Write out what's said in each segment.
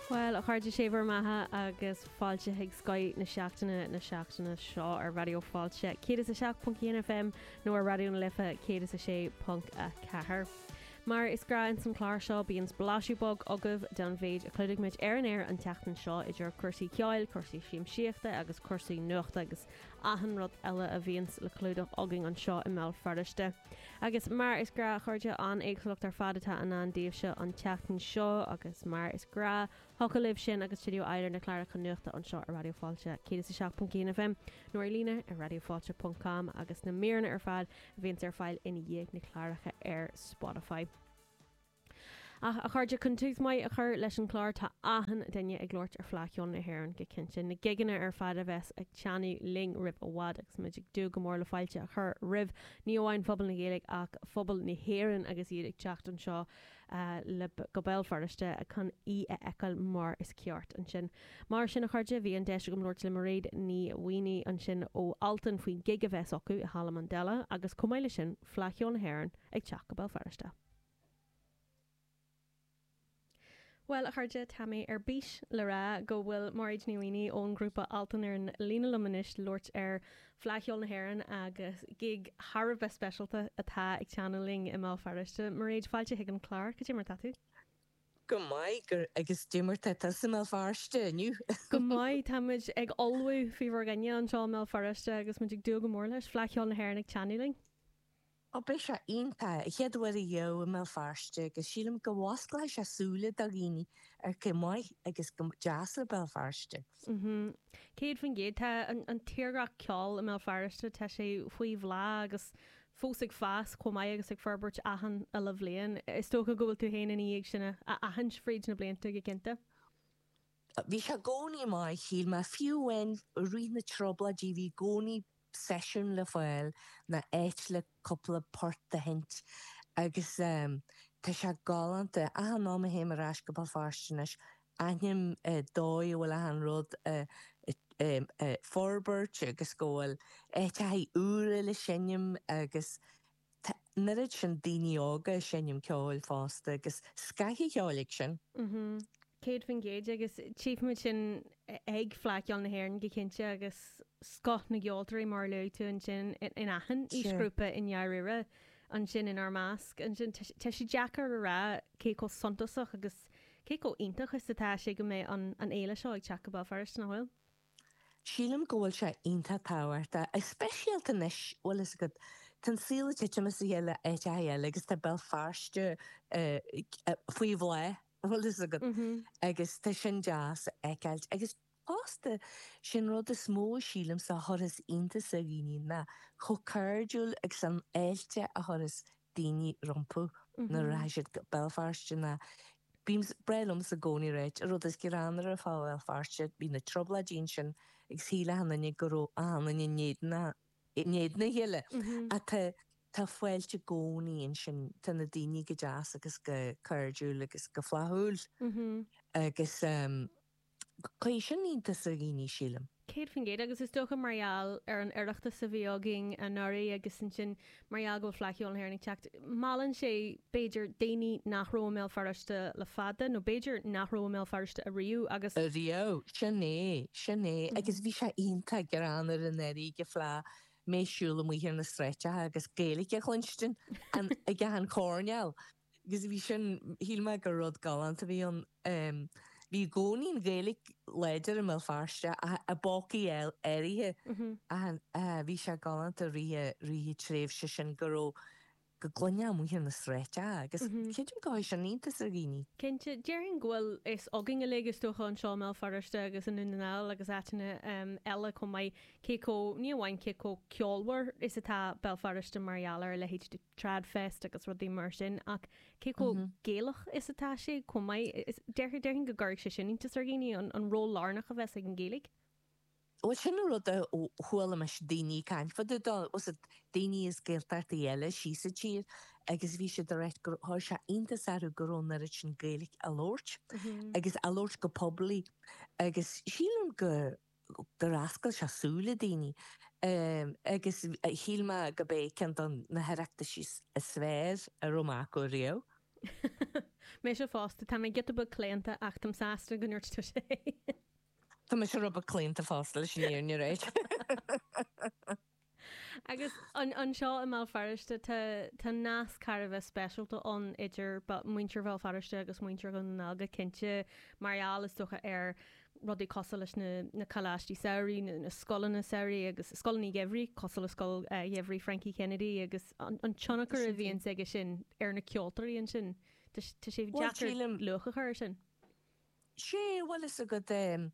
Bhuel, a chairde, sé bhur mbeatha agus fáilte chuig Scoth na Seachtaine na seachtaine seo ar Raidió Fáilte 107.1 FM nó ar Raidió na Life 106.4. Mar is gnáth ins an clár seo bíonn blaisiú beag agaibh den mhéid a chlúdaigh muid ar an aer an tseachtain seo idir cúrsaí ceoil, cúrsaí siamsaíochta agus cúrsaí nuachta agus achan rud eile a bhíonns le clúdach againn anseo i mBéal Feirste. Agus mar is gnáth, a chairde, an-éagsúlacht ar fad atá i ndán daoibhse an tseachtain seo agus mar is gnáth, thiocfadh libh sin agus stiúideo uilig na cláracha nuachta anseo ar Raidió Fáilte 107.1 FM nó ar líne ar raidiofailte.com agus na míreanna ar fad a bhíonns ar fáil i ndiaidh na cláracha ar Spotify. Ach, a chairde, chun tús maith a chur leis an chlár, tá achan duine ag labhairt ar Fleadh Cheoil na hÉireann go cinnte, na gigeanna ar fad a bheas ag teannadh linn roimh i bhfad agus muid ag dúil go mór le fáilte a chur roimh ní amháin phobal na Gaeilge ach phobal na hÉireann agus iad ag teacht anseo go Béal Feirste chun í a fheiceáil mar is ceart ansin. Mar sin, a chairde, bhí an deis agam labhairt le Mairéad Ní Mhaonaigh ansin ó Altan faoin gig a bheas acu i Halla Mandela agus chomh maith le sin, Fleadh Cheoil na hÉireann ag teacht go Béal Feirste. Bhuel, a chairde, tá mé ar bís le rá go bhfuil Mairéad Ní Mhaonaigh ón ngrúpa Altan ar an líne liom anois le labhairt ar Fleadh Cheoil na hÉireann agus gig thar a bheith speisialta atá ag teannadh linn i mBéal Feirste. Mairéad, fáilte chuig an chlár, cad é mar atá tú? Go maith, go, agus cad é mar tá tusa i mBéal Feirste inniu? Go maith, táimid ag ullmhú faoi bhur gcoinne anseo i mBéal Feirste agus muid ag dúil go mór leis, Fleadh Cheoil na hÉireann ag teannadh linn. Ó beidh sé iontach. An chéad uair ariamh i mBéal Feirste agus sílim go bhfosclóidh sé súile do dhaoine ar cé chomh maith agus chomh deas le Béal Feirste. Céad faoin gcéad. Tá an tírdhreach ceoil i mBéal Feirste, tá sé faoi bhláth agus fós ag fás chomh maith agus ag forbairt achan uile bhliain. Is dócha go bhfuil tú féin i ndiaidh sin a aithint fríd na blianta go cinnte. Bhí sé i gcónaí maith don cheol mar fiú amháin i rith na trioblóidí bhí i gcónaí seisiún le fáil ná áit le cúpla port a sheinnt agus tá sé galánta achan am a théim ar ais go Béal Feirste anois aithním dóigh a bhfuil achan rud ag forbairt agus go bhfuil áiteachaí úra le seinm agus Tá an oiread sin daoine óga ag seinm ceoil fosta agus scoth an cheoil á sheinm. Céad faoin gcéad agus tchífimid sin ag Fleadh Cheoil na hÉireann go cinnte agus scoth na gceoltóirí mar a luaigh tú ansin in achan aoisghrúpa i ndáiríre ansin inár measc ansin. Tá sé deacair a rá cé chomh suntasach agus cé chomh iontach is atá sé go mbeidh an fhéile seo ag teacht go Béal Feirste nach bhfuil? Sílim go bhfuil sé iontach tábhachtach, go speisialta anois, bhfuil fhios agat, tá an saol ag titim as a chéile áit ar bith eile agus tá Béal Feirste faoi bhláth, bhfuil fhios agat, agus tá sin deas a fheiceáilt. Agus fosta, sé'n rud is mó a sílimse a chuirfeas iontas ar dhaoine ná chomh cairdiúil agus an fháilte a chuirfeas daoine rompu nuair a rachas siad go Béal Feirste ná Ba bhreá liomsa i gcónaí a ráit an rud is greannmhaire fá Bhéal Feirste bhí na Trioblóidí ansin agus shíl achan duine go raibh achan duine in éadan in éadan a chéile ach tá tá fáilte i gcónaí ansin tá na daoine go deas agus go cairdiúil agus go flaithiúil agus Cuirfidh sin iontas ar dhaoine, sílim. Céad faoin gcéad, agus is dócha mar gheall ar an Oireachtas a bhí againn anuraidh agus ansin mar gheall go bhfuil Fleadh Cheoil na hÉireann ag teacht, meallann sé, b'fhéidir, daoine nach raibh i mBéal Feirste le fada nó b'fhéidir nach raibh i mBéal Feirste ariamh agus. Ariamh, sin é, sin é. Agus bhí sé iontach greannmhar an oiread go raibh mé ag siúl amuigh ar na sráideacha agus Gaeilge a chluinstin ag achan coirnéal. agus bhí sin, shíl mé gur rud galánta a bhí ann. Bhí i gcónaí an Ghaeilge láidir i mBéal Feirste ach i bpócaí áirithe ach bhí sé galánta i rith na tréimhse sin go raibh, go gcluinfeá í amuigh ar na sráideacha agus creidim gur chuir sin iontas ar dhaoine. Cinnte, déarfainn go bhfuil fhios againn uilig is dócha anseo i mBéal Feirste agus i nDún na nGall agus áiteanna eile chomh maith cé chomh, ní amháin cé chomh ceolmhar is atá Béal Feirste mar gheall ar a leithéid de. Tradfest agus rudaí mar sin ach cé chomh Gaelach is atá sé chomh maith? Is déarfainn, déarfainn go gcuirfeadh sé sin iontas ar dhaoine an an ról lárnach a bheas ag an Ghaeilge. Bhuel sin an rud a chuala mise daoine ag caint fá dtaobh dó, fiú daoine as Gaeltachtaí eile síos sa tír agus bhí siad ag ráit gur chuir sé iontas orthu go raibh an oiread sin Gaeilic á labhairt agus á labhairt go poiblí agus sílim go gur oscail sé súile daoine agus shíl mé gurb é ceann de na hOireachtaisí ab fhearr a raibh mé acu riamh. Mise fosta. Tá mé giota beag claonta ach táim sásta go ndúirt tú sé. Tá mise rud beag claonta fosta leis an fhírinne a ráit? Agus anseo i mBéal Feirste tá nasc thar a bheith speisialta ann idir muintir Bhéal Feirste agus muintir Dhún na nGall go cinnte mar gheall is dócha ar rudaí cosúil leis na coláistí samhraidh nó na scoileanna samhraidh agus scoileanna geimhridh cosúil le scoil gheimhridh Frankie Kennedy agus an tionchar a bhíonn aige sin ar na ceoltóirí ansin. Tá sé deacair luach a chur air sin. Sé, bhuel is a gcuid.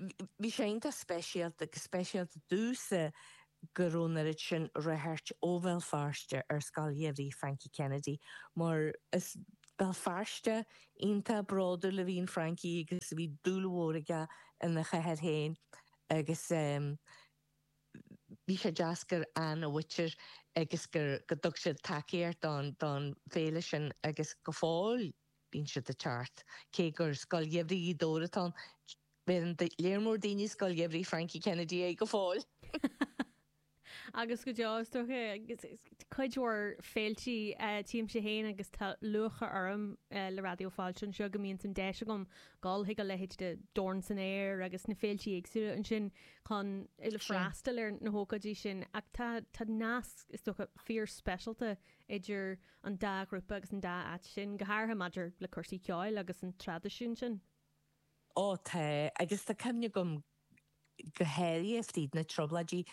Bhí sé iontach speisialta, go speisialta domhsa go raibh an oiread sin ag teacht ó Bhéal Feirste ar Scoil Gheimhridh Frankie Kennedy mar is Béal Feirsteach iontach bródúil a bhí in Frankie agus bhí dúil mhór aige ina chathair féin agus bhí sé deas gur tháinig a mhuintir agus go dtug siad tacaíocht don fhéile sin agus go fóill. Bíonn siad ag teacht. Cé gur scoil gheimhridh Ghaoth Dobhair atá ann, beireann léar mór daoine scoil gheimhridh Frankie Kennedy air go fóill. Agus go deo, is dócha. Cuid mhór féiltí téimse féin agus tá lúcháir orm le Raidió Fáilte anseo go mbíonns an deis agam dul chuig a leithéid de Dorn san Aer agus na féiltí éagsúla ansin chun freastal ar na hócáidí sin ach tá nasc, is dócha, fíor speisialta idir an dá ghrúpa agus an dá áit sin, go háirithe maidir le cúrsaí ceoil agus an traidisiún sin. Ó tá, agus tá cuimhne agam go háirithe fríd na Trioblóidí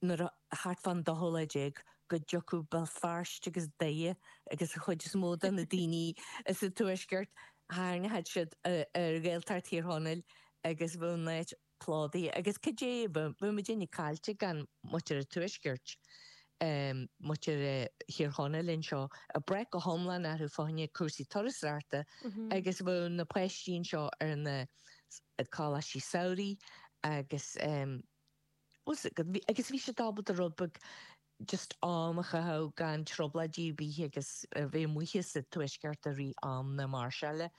nuair a, thart fán dóú lá déag, go dtiocfadh Béal Feirste agus Doire agus an chuid is mó de na daoine as an Tuaisceart, tharraingeodh siad ar Ghaeltacht Thír Chonaill agus bheadh an áit Plódaithe agus cad é bheadh muidinne caillte gan muintir an Tuaiscirt, muintir Thír Chonaill anseo, ag brath go hiomlán orthu fá choinne cúrsaí turasóireachta agus bheadh na páistí anseo ar na coláistí samhraidh agus, bhuel, agus bhí siad ábalta rud beag just am a chaitheamh gan trioblóidí ar bith agus a bheith amuigh as an Tuaisceart i rith am na máirseála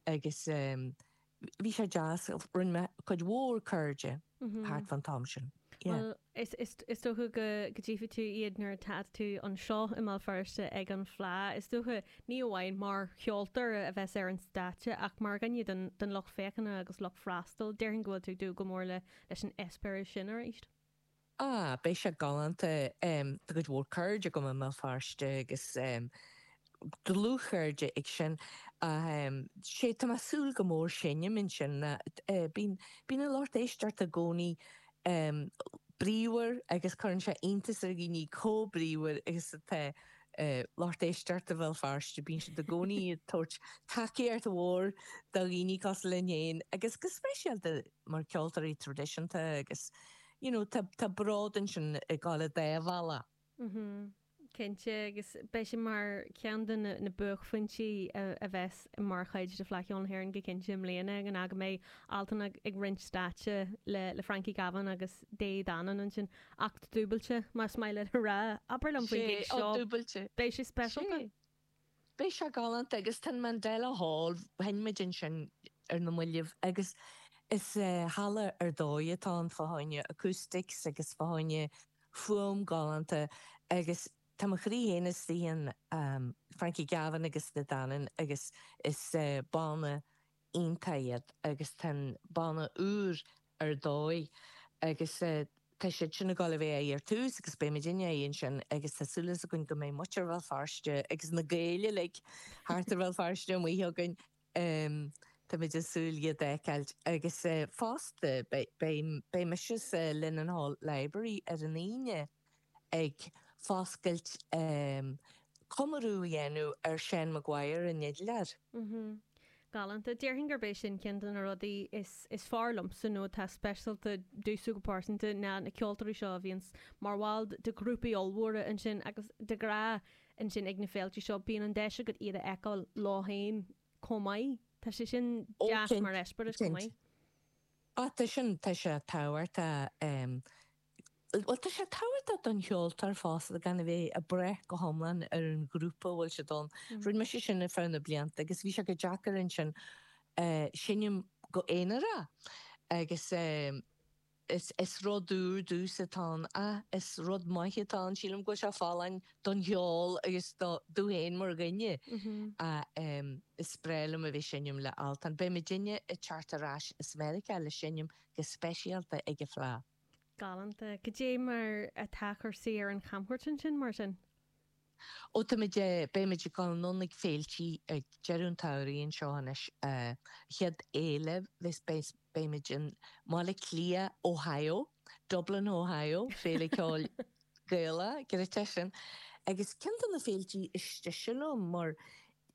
agus bhí sé deas, rinne mé cuid mhór cairde thart fán t-am sin. Bhuel is dócha go dtífidh tú iad nuair atá tú anseo i mBéal Feirste ag an Fleá is dócha, ní amháin mar cheoltóir a bheas ar an stáitse ach mar dhuine den lucht féachana agus lucht freastail, déarfainn go bhfuil tú ag dúil go mór leis an eispéireas sin arís. Ah, beidh sé galánta. Tá cuid mhór cairde agam i mBéal Feirste agus dlúthchairde ag sin. Ach sé, tá mé ag súil go mór seinm ansin. Bíonn an lucht éisteachta i gcónaí bríomhar agus cuireann sé iontas ar dhaoine comh bríomhar agus atá lucht éisteachta Bhéal Feirste. Bíonn siad i gcónaí ag tabhairt tacaíocht mhór do dhaoine cosúil linn fhéin agus go speisialta mar ceoltóirí traidisiúnta agus you know tá tá bród ansin ag gabháil an dá bhealach. Mhm. Cinnte agus beidh sé mar ceann de na na buaicphointí a a bheas mar chuid de Fleadh Cheoil na hÉireann go cinnte i mbliana an gig a mbeidh Altan ag roinnt stáitse le le Frankie Gavin agus Dé Danann ansin. Acht dúbailte, más maith leat a rá. Abair liom faoin gig seo. Beidh sé speisialta? Beidh sé galánta agus tá an Mandela Hall, sheinn muid ansin ar na mallaibh agus is halla ar dóigh atá ann fá choinne acoustics agus fá choinne fuaim galánta agus tá mo chroí féin istigh in Frankie Gavin agus De Dannan agus is banna iontach iad agus tá an banna úr ar dóigh agus tá siad sin ag dul a bheith ann ar tús agus beidh muidinne ann ansin agus tá súil againn go mbeidh muintir Bhéal Feirste agus na Gaeil uilig thart ar Bhéal Feirste amuigh againn tá muid ag súil le iad d'fheiceáilt agus fosta beidh mise sa Linen Hall Library ar an Aoine. ag foscailt comóradh a dhéanamh ar Sheán McGuire an fidléir. Galánta. Déarfainn gurb é sin ceann de na rudaí is fearr liomsa nó atá speisialta domhsa go pearsanta ná na ceoltóirí seo a bhíonns mar bhaill de ghrúpaí ollmhóra ansin agus de ghrá ansin ag na féilte seo. Bíonn an deis agat iad a fheiceáil leo féin chomh maith. Tá sé sin deas mar eispéireas chomh maith. Tá sin, tá sé tábhachtach. Bhuel, tá sé tábhachtach don cheoltóir fosta gan a bheith ag braith go hiomlán ar an ghrúpa a bhfuil siad ann. Rinne mise sin ar feadh na blianta agus bhí sé deacair ansin seinnim go aonarach agus is rud úr domhsa atá ann ach is rud maith atá ann. Sílim go bhfuil sé folláin don cheol agus duit féin mar dhuine ach is breá liom a bheith ag seinnim le Altan. Beidh muidinne ag teacht ar ais as Meiriceá le seinnim go speisialta ag an Fleadh. Galánta. Cad é mar atá cúrsaí ar an chamchuairt ansin, mar sin? Ó, táimid, beimid ag dul anonn ag féiltí ag deireadh an tsamhraidh anseo anois. An chéad fhéile, beidh, beimid i mBaile Átha Cliath, Ohio, Dublin, Ohio, Féile Ceoil Gaelach, go hiontach é sin. Agus ceann de na féiltí is deise liom mar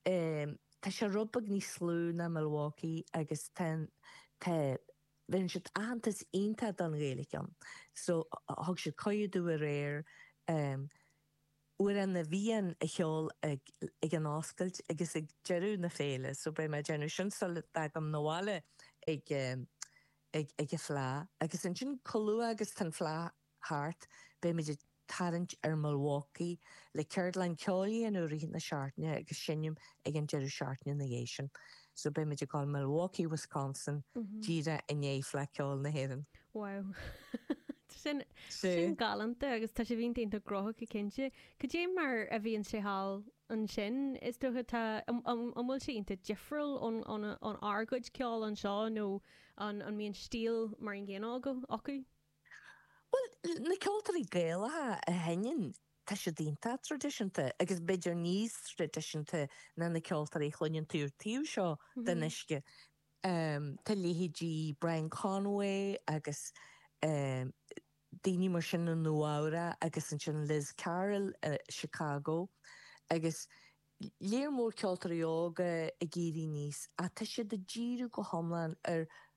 tá sé rud beag níos lú ná Milwaukee agus tá, tá, Bheireann siad aitheantas iontach don Ghaeilge so thug siad cuireadh domh aréir Amhrán na bhFiann a cheol ag an oscailt agus ag deireadh na féile so beidh mé ag déanamh sin sula dtagaim 'na bhaile ag an fleadh agus ansin chomh luath agus tá an fleadh thart, beimid ag tarraingt ar Milwaukee le ceardlann ceoil i rith na seachtaine agus seinm ag an deireadh seachtaine ina dhiaidh sin. So beimid ag dul Milwaukee, Wisconsin díreach i ndiaidh Fleadh Cheoil na hÉireann. Wow. Tá sin, tá sin galánta agus tá sibh iontach gnóthach go cinnte. Cad é mar a bhíonn sé thall ansin? Is dócha tá, an bhfuil sé iontach difriúil ón, ón, ón ár gcuid ceoil anseo nó an, an mbíonn stíl mar an gcéanna acu? Bhuel, na ceoltóirí Gaelacha a sheinneann, tá siad iontach traidisiúnta agus b'fhéidir níos traidisiúnta ná na ceoltóirí a chluineann tú ar taobh seo den uisce. Tá leithéidí Brian Conway agus daoine mar sin i Nua-Eabhra agus ansin Liz Carroll i Chicago agus lear mór ceoltóirí óga ag éirí aníos ach tá siad ag díriú go hiomlán ar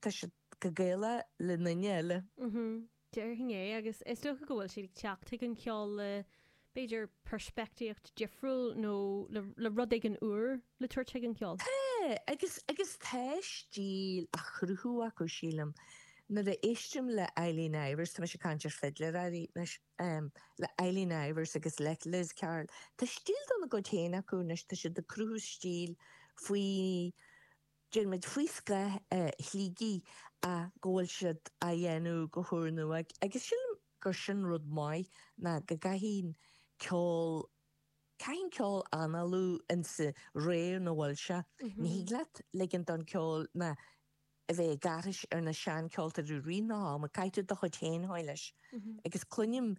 tá siad go Gaela le ndaoine eile. Déarfainn é agus is dócha go bhfuil siad ag teacht chuig an cheol le b'fhéidir peirspeictíocht difriúil nó le rud éigin úr le tabhairt chuig an cheol. Agus agus tá stíl á chruthú acu sílim. Nuair a éistim le Eileen Ivers, tá mise ag caint ar fidléirí arís anois, le Eileen Ivers agus le Liz Carroll, tá stíl dá gcuid féin acu anois, tá siad ag cruthú stíl faoi Déanann muid faoi scáth a shlígí ach go bhfuil siad á dhéanamh go húrnua agus sílim gur sin rud maith ná go gcaitheann ceol, caitheann ceol análú ins a' ré ina bhfuil sé. Ní thig leat ligint don cheol ná a bheith ag aithris ar na seancheoltóirí i rith an ama ach caithfidh tú do chuid féin a thabhairt leis agus cluinim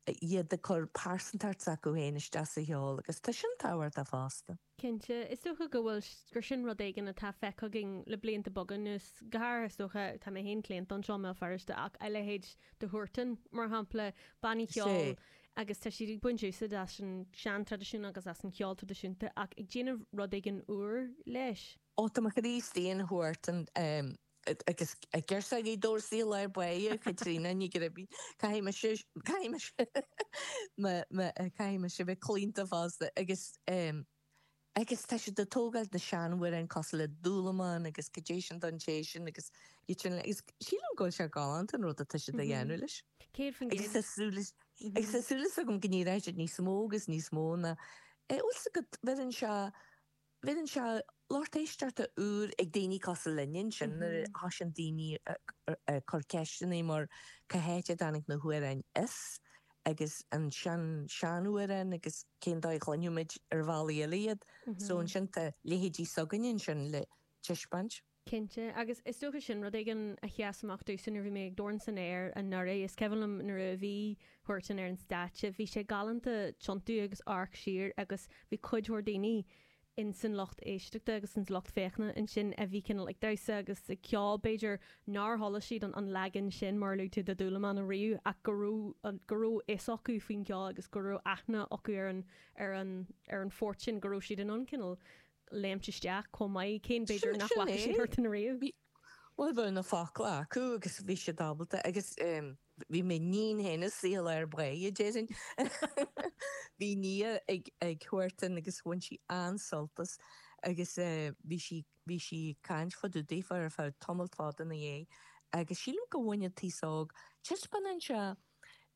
iad ag cur pearsantacht s'acu féin isteach sa cheol agus tá sin tábhachtach fosta. Cinnte. Is dócha go bhfuil, gur sin rud éigin atá feicthe againn le blianta beaga anuas. Go háirithe is dócha, tá mé féin claonta don cheol i mBéal Feirste ach a leithéid de Huartan mar shampla, bannaí ceoil agus tá siad ag baint úsaid as an seantraidisiún agus as an cheol traidisiúnta ach ag déanamh rud éigin úr leis. Ó tá mo Chríostaí, an Huartan Agus girseach Ghaoth Dobhair C Ll Aodh Buidhe, Caitríona Ní Gribín. Caithfidh mise, caithfidh mise me, me, caithfidh mise bheith claonta fosta agus em agus tá siad ag tógáil na seanamhráin cosúil le Dúlamán agus cad é sin don té sin agus iad sin uilig agus sílim go bhfuil sé galánta an rud atá siad a dhéanamh leis. Céad faoin agus tá gcéad. súil is agus tá súil is agam go ndíreoidh siad níos mó agus níos mó na eh bhfuil 's agat bheireann sé Bíonn lucht éisteachta úr ag daoine cosúil linn ansin nuair a thoisigh daoine ag cur ceisteanna mar cá háit a dtáinig na hamhráin seo agus na sean sean amhráin agus cén dóigh a chluinfidh muid ar bhealaí eile iad so ansin tá leithéidí s'againne ansin le tispeáint. Cinnte. Agus is dócha sin rud éigin a sheas amach domhsa nuair a bhí mé ag Dorn san Aer anuraidh. Is cuimhin liom nuair a bhí Huartan ar an stáitse, bhí sé galánta tiontú agus amharc siar agus bhí cuid mhór daoine in san lucht éisteachta agus ins lucht féachana ansin a bhí cineál ag damhsa agus ag ceol b'fhéidir nár chuala siad an leagan sin mar a luaigh tú de Dhúlamán ariamh ach go raibh go raibh a fhios acu faoin gceol agus go raibh aithne acu ar an ar an ar an phort sin go raibh siad in ann cineál léimint isteach chomh maith, cé b'fhéidir nach bhfaca siad thart ann riamh. Bhuel, bhí na focla acu agus bhí siad ábalta agus bhí m'iníon féin iontach sásta ar bae, a déarfainn. Bhí Nia ag tabhairt amhrán agus bhain sí an-sult as agus bhí sí bhí sí ag caint fá dtaobh daofa ar feadh tamall fada ina dhiaidh agus sílim go mbaineann an t-aos óg, taispeánann sé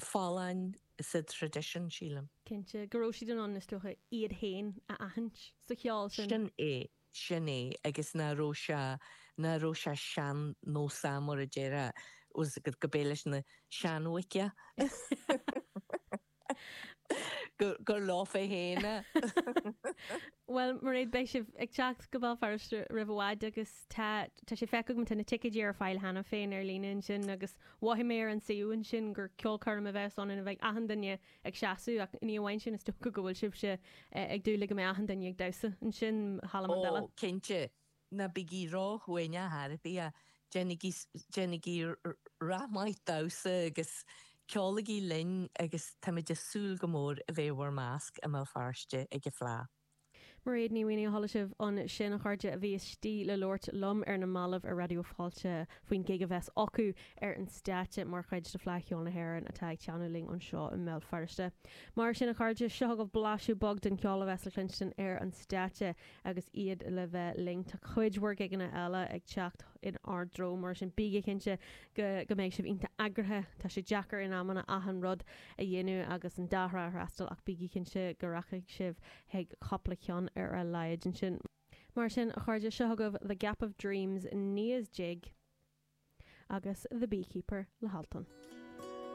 folláin sa traidisiún, sílim. cinnte, go raibh siad in ann, is dócha, iad féin a aithint sa cheol sin. Sin é, sin é, agus nach raibh sé, nach raibh sé sean-nósach, mar a déarfá, gurb é leis na seanbhoic é? gur leofa féin é. Bhuel, Mairéad, beidh sibh ag teacht go Béal Feirste roimh i bhfad agus tá, tá sé feicthe agam, tá na ticéidí ar fáil cheana féin ar líne ansin agus Mhothaigh mé ar an suíomh ansin gur ceolchoirm a bheas ann ina bheidh achan duine ag seasamh ach ní amháin sin is dócha go bhfuil sibhse ag dúil le go mbeidh achan duine ag damhsa ansin i Halla Mandela. cinnte, ná bígí róchiúin a chairde, déanaigí, déanaigí racht maith damhsa agus ceolaigí linn agus táimid ag súil go mór a bheith i bhur measc i mBéal Feirste ag an Fleadh. Mairéad Ní Mhaonaigh a chuala sibh ansin a chairde a bhí istigh le labhairt liom ar na mallaibh ar Raidió Fáilte faoin gig a bheas acu ar an stáitse mar chuid de Fhleadh Cheoil na hÉireann atá ag teannadh linn anseo i mBéal Feirste. Mar sin a chairde, seo agaibh blaiseadh beag den cheol a bheas le cluinstin ar an stáitse agus iad le bheith linn. Tá cuid mhór gigeanna eile ag teacht in ár dtreo mar sin bígí cinnte go mbeidh sibh iontach eagraithe, tá sé deacair in amanna achan rud a dhéanamh agus an dá thrá a fhreastal ach bígí cinnte go rachaidh sibh chuig cúpla ceann ar a laghad ansin. Mar sin a chairde, seo chugaibh The Gap of Dreams, Nia's Jig agus The Beekeeper le hAltan.